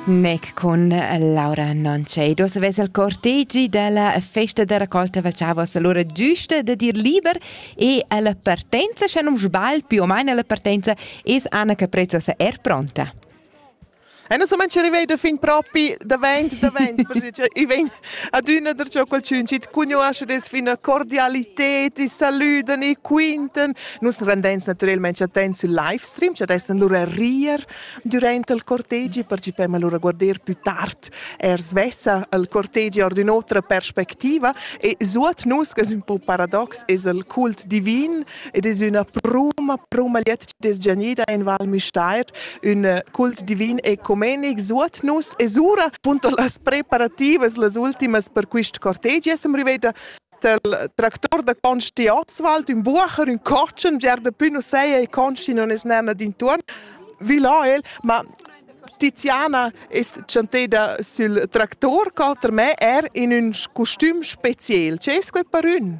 Mec con Laura Noncedos vesa il cortegi della festa de raccolta faceva allora giusta de dir liber e alla partenza, se non sbagl, più o meno alla partenza, es Anna Caprezzosa er pronta. E non so manche arrivei da fin propi davent, davent, perché i vegn Adüna darcheu qualchün chi't cugnuoscha dess üna cordialited e salüdan e quintan. Nus rendens natürelmaing attents sül livestream, cha dessan lura rir dürant il cortegi partecipem alura a guarder pü tard eir svessa al cortegi our d'ün'otra perspectiva e suot nus, che es ün po paradox, es il cult divin Ed es üna pruma, pruma liet chi'd es giagnida in Val Müstair, ün cult divin ecumenic suot nus. E sura, punto las preparativas, las ultimas per quist cortegi esen riveda del tractor da Consti Oswald, ün bucher, ün cotschen, vier da pü nu seia e Consti non es nana d'intuorn, vi là el, ma Tiziana es chanteda sül tractor cota me er in ün costüm speziel. Che es quai per ün?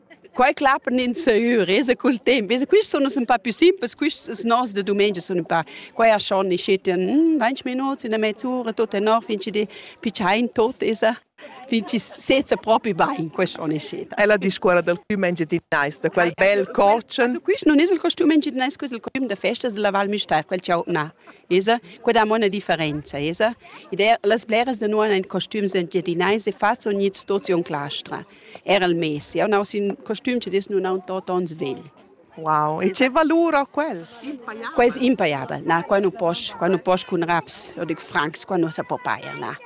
Quei clappan ins seur, esa cul temps, esa quists sun nus ün pa più simpels, quists noss da dumengia sun ün pa quai a schon i schettan hm, 20 minuts in a mezz'ura, tot tenor fin chi di pichain tot esa fin chi seza propi bain, quest on è schet. È la discuora dal costüm engiadinais, da quel bel cotschen? Quist nun es il costüm engiadinais, quest è il costüm da festas della Val Müstair, quel cha ho na. Esa, quella ha una differenza, esa. Ed er las bleras da noi han costüms engiadinais e fazzo ogni situaziun claustra. Era il mesi. Eu n'ho ün costüm che dis nun haun tot ons vegl. Wow, e che valur ho quel? Quel es impaiabel, na, qua nu posch, qua nu posch cun raps, eu dic francs, qua nu sa po pajer, na.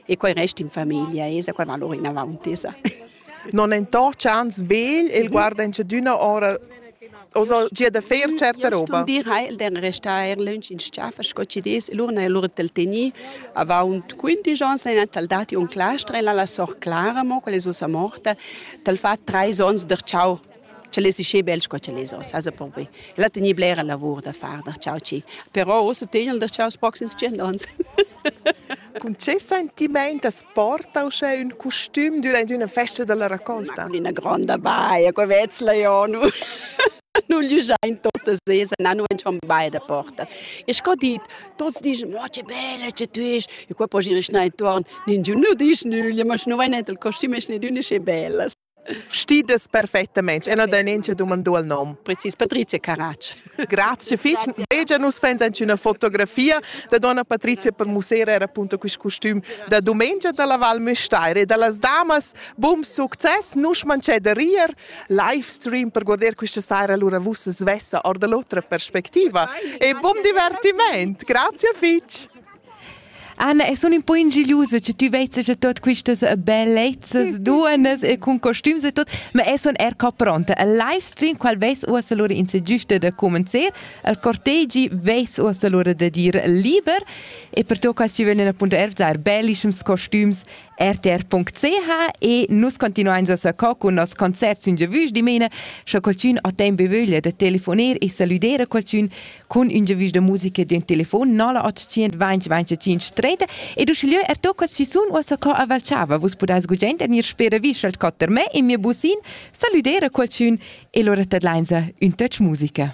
E quai resta in famiglia, esa quel valur inavaunt, esa. Non entorcia ans vegl e mhm. guarda in chadüna ora osa gia da fer certa roba. dir ha el den restar er lunch in schafa sco ci des lur na lur tel teni avaunt 15 ans en tal dati un clastre la la sor Clara mo quelle usa morta tal fa 3 ons der ciao ce les isce bel sco ce les ots asa por be la teni blera lavur da far der ciao ci però osa tenel der ciao proxims 100 ans Cun che sentiment as porta uschè ün costüm durant üna festa dalla raccolta? Ma cun üna gronda baia, co vezla jo nu nu glüschain totas sesa, na nu entschan bain da porta. E sco dit, tuots dischan, oh che bella che tü est, e qua posch ir schna intuorn, ningiun nu disch nüglia, ma schi nu vain enter il costüm e schneidün e sche bellas. Stides perfettamente, e non da neanche domandò il nome. Precis Patrizia Caratsch. Grazie fich. Vegia nus fans anche una fotografia da donna Patrizia per musere era appunto quist costum da dumengia dalla Val Müstair e dallas damas. Bum success, nus mancè da rier. Live stream per guardare questa sera allora vussa svessa or dall'otra perspectiva. E bum divertiment. Grazie fich. Anna, e sun ün po ingigliusa che tü vezzas a tot quistas bellezzas duonnas e cun costüms e tot, ma eu sun er co pronta. Al livestream qual vess uossa lura in se giusta da comencer, al cortegi vess uossa lura da dir liber e per to cas ci vegnan appunto ervzar bellischums costüms rtr.ch e nus continuains uossa co cun nos concert sün giavüsch dimena, scha qualchün ha temp e vöglia da telefoner e salüder a qualchün, cun un giavisch da musica d'un telefon no la 800 20 25 30 ed uschigliö er to quas chi sun uossa co a Valchava vus pudais gugent en ir spera vi schalt cotter me e mia busin salüdera qualchün e lura tadlainsa ün touch musica